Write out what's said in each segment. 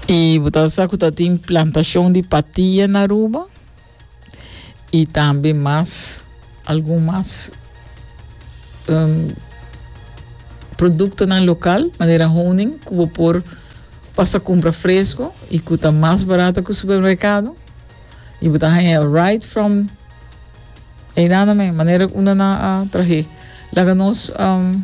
Y bo ta sa cu ta tin plantacion di patia na Aruba y tambe mas algun mas um, productonan local, manera honing, cu bo por pasa cumpra fresco y cu ta mas barato cu supermercado. Y bo ta haya right from Eidana me, manera cu una na a trahe. Laga nos um,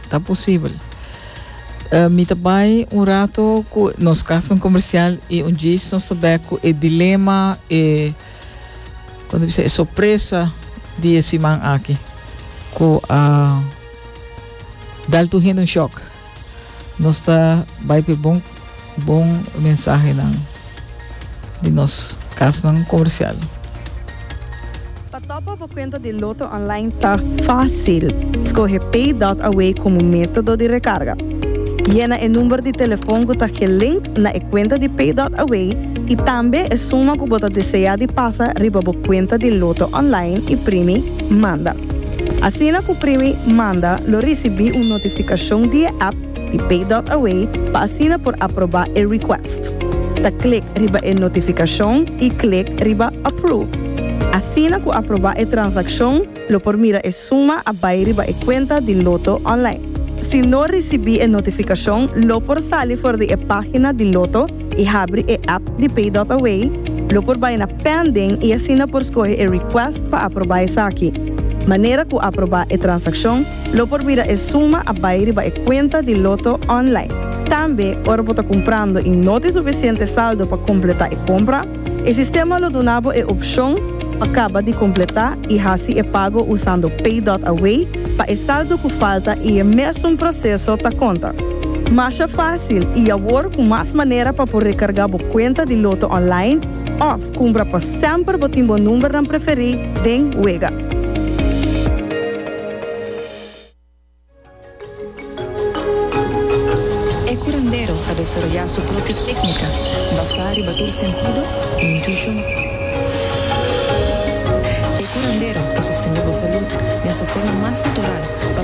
Ta posibel. Uh, mi ta bai un rato ku nos kasnan komersial i un djis nos ta bek ku e dilema, e kon bisa e sorpresa di e siman aki ku a uh, dal tur hende un shock. Nos ta bai pe bon Bon mensahenan di nos kasnan komersial. Pa topa bo kuenta di Lotto Online ta fásil. Skohe Pay Dot Away komo método di rekarga. Yena e number di telefon ku ta gelink na e kuenta di Pay Dot Away i tambe e suma ku bo ta deseá di pasa riba bo kuenta di Lotto Online i primi Manda. Asina ku primi Manda lo risibí un notifikashon di e app di Pay.Away pa asina por aproba e request. Ta klik riba e notifikashon i klik riba Approve. Asina ku aproba e transakshon lo por mira e suma a bai riba e kuenta di Lotto online. Si no risibí e notifikashon lo por sali for di e página di Lotto i habri e app di Pay.Away, lo por bai na Pending i asina por skohe e request pa aproba esaki. Manera ku aproba e transakshon. Lo por bira e suma a bai riba e kuenta di Lotto online. Tambe ora bo ta kumprando i no tin sufisiente saldo pa kompletá e kompra, e sistema lo duna bo e opshon pa kaba di kompletá i hasi e pago usando PayDotAway pa e saldo ku falta i e mesun proseso ta konta. Masha fásil i awor ku mas manera pa por rekargá bo kuenta di Lotto online òf kumbra pa semper bo tin bo numbernan preferí den wega. E curandero ta desaroyá su propio técnica basá riba tur sentido i intuishon. E curandero ta sostendé bo salud den su forma mas natural pa.